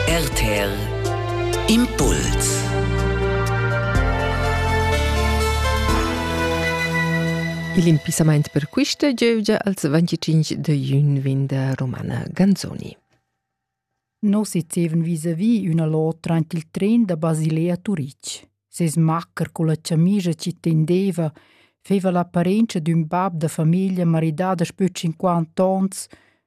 RTL Impuls Il impissamaint per quista giövgia als 25 de jun vin da Romana Ganzoni. No se zeven vis-à-vis üna l'otra ant il tren da Basilea a Turic. Ses macker con la chamija ci tendeva feva l'apparenza d'ün bab da famiglia maridada spö 50 ons,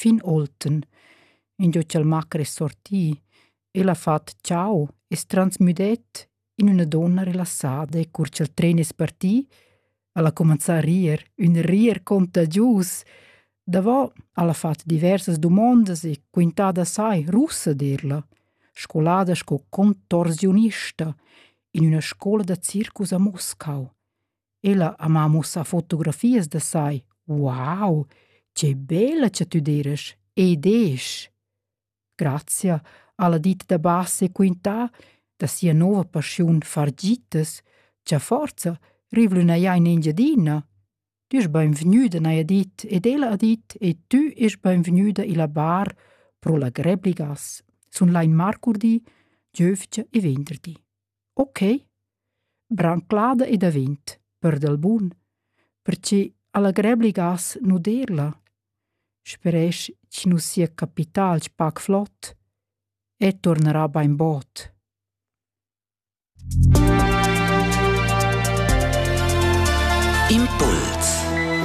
Fin Olten, ingio cha'l macher es sorti, el ha fat ciao e's transmüdet in üna donna relassada e cur cha'l tren es parti, al ha cumanzà a rir, ün rir contagius. Davo al ha fat diversas dumondas e quintà da sai russa dir la, scolada sco contorsiunista in üna scoula da circus a Moscau. Ella ha ma muossà fotografias da sai. Wow, che bella cha tü d'eras! Ed esch! Grazia alla ditta da bas e quintà da sia nouva paschiun fargitas cha forza rivlü n'haja in Engiadina. Tü est bainvgnüda, n'haja dit, ed ella ha dit e tü est bainvgnüda illa bar pro la Grebligas. Sun là in marcurdi, giövgia e venderdi. Ok, branclada e davent, per dal bun, perche allegrebli gas nu derla, speresch chi nu sia capital pac flot e tornarà bainbod. Impuls